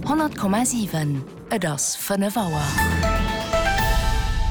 100,7 Et ass 5 Auer.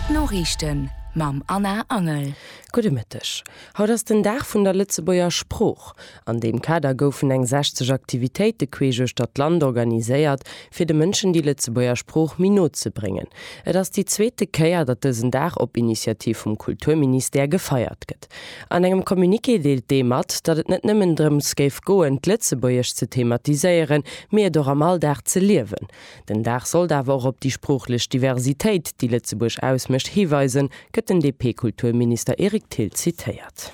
D'Noriichten mam Anna Angel. Gudde Mëtteg. Haut ass den Dag vun der Lëtzebuerger Sprooch. An deem Kader goufen eng 60 Aktivitéite queesch uechter d'Land organiséiert, fir de Mënschen déi Lëtzebuerger Sprooch méi no ze bréngen. Et ass déi zweete Kéier, datt dësen Dag op Initiativ vum Kulturministère gefeiert gëtt. An engem Communiqué deelt d'EU mat, datt et net nëmmen drëms géif goen, d'Lëtzebuergesch ze thematiséieren, mee et och am Alldag ze liewen. Den Dag sollt awer och op déi sproochlech Diversitéit, déi Lëtzebuerg ausmécht, hiweisen, gëtt den DP-Kulturminister Eric Thill zitéiert.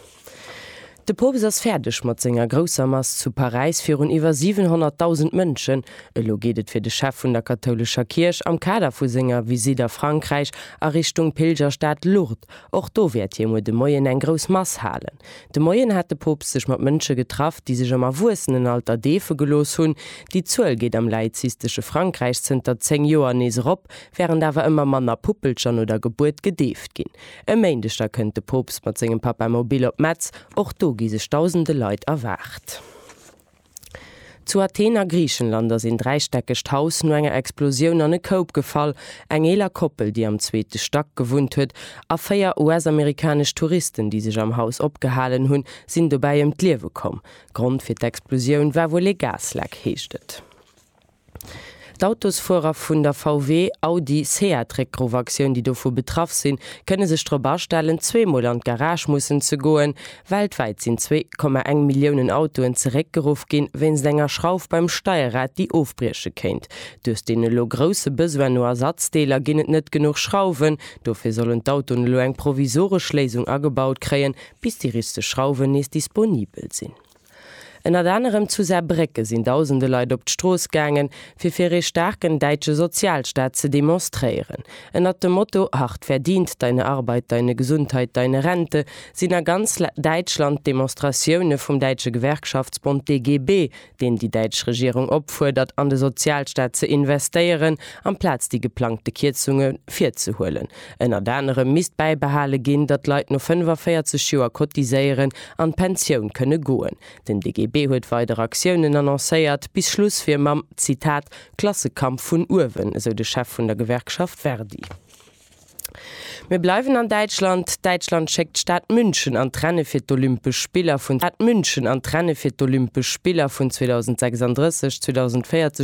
De Poopst ass fäerdeg mat senger grousser Mass zu Paräis virun iwwer 700.000 Mënschen. Elo geet et fir de Chef vun der kathoulescher Kierch am Kader vu senger Visitt a Frankräich a Richtung Pilgerstad Lourdes. Och do wäert hie muer de Moien eng grouss Mass halen. De Moien hat de Poopst sech mat Mënsche getraff, déi sech am Erwuessenenalter deefe gelooss hunn. Déi Zuel geet am laizistesche Frankräich zënter 10 Joer nees erop, wärend awer ëmmer manner Puppelcher no der Gebuert gedeeft ginn. E Méindeg da kënnt de Poopst mat sengem Papamobile op Metz. Och do gi sech dausende Leit erwaart. Zu Athen a Griichenland ass een dräistäckegt Haus no enger Explosioun an e Koup gefall. Eng eeler Koppel, déi am zweete Stack gewunnt huet, a véier US-amerikanesch Touristen, déi sech am Haus opgehalen hunn, sinn dobäi ëm d'Liewe komm. Grond fir d'Explosioun war wuel ee Gasleck, heescht et. D'Autosfuerer vun der VW, Audi, Seat Réckgruff-Aktioun, déi dovu betraff sinn, kënne sech drop astellen, zweemol an d'Garage mussen ze goen. Weltwäit sinn zwee Komma eng Milliounen Autoen zeréckgeruff ginn, wéinst enger Schrauf beim Steierrad, déi ofbrieche kéint. Duerch den elo grousse Besoin no Ersatzdeeler ginn et net genuch Schrauwen. Dofir sollen d'Autoen elo eng provisoresch Léisung agebaut kréien, bis déi richteg Schrauwen nees disponibel sinn. Ënnert anerem zu Saarbrécke sinn dausende Leit op d'Strooss gaangen, fir fir ee staarken däitsche Sozialstaat ze demonstréieren. Ënnert dem Motto Hart verdient, deine Arbeit, deine Gesundheit, deine Rente sinn a ganz Däitschland d'Demonstratioune vum däitsche Gewerkschaftsbond DGB, deen déi däitsch Regierung opfuerdert an de Sozialstaat ze investéieren amplaz déi geplangte Kierzunge virzehuelen, Ënnert anerem misst bäibehale ginn, datt Leit no 45 Joer cotiséieren, an d'Pensioun kënne goen. Den DGB huet weider Aktiounen annoncéiert. Bis Schluss wier mam, Zitat, Klassekampf vun uewen, esou de Chef vun der Gewerkschaft ver-di. Mir bleiwen an Däitschland. Däitschland schéckt d'Stad München an d'Renne fir d'Olympesch Spiller vun München an d'Renne fir d'Olympesch Spiller vun 2036, 2040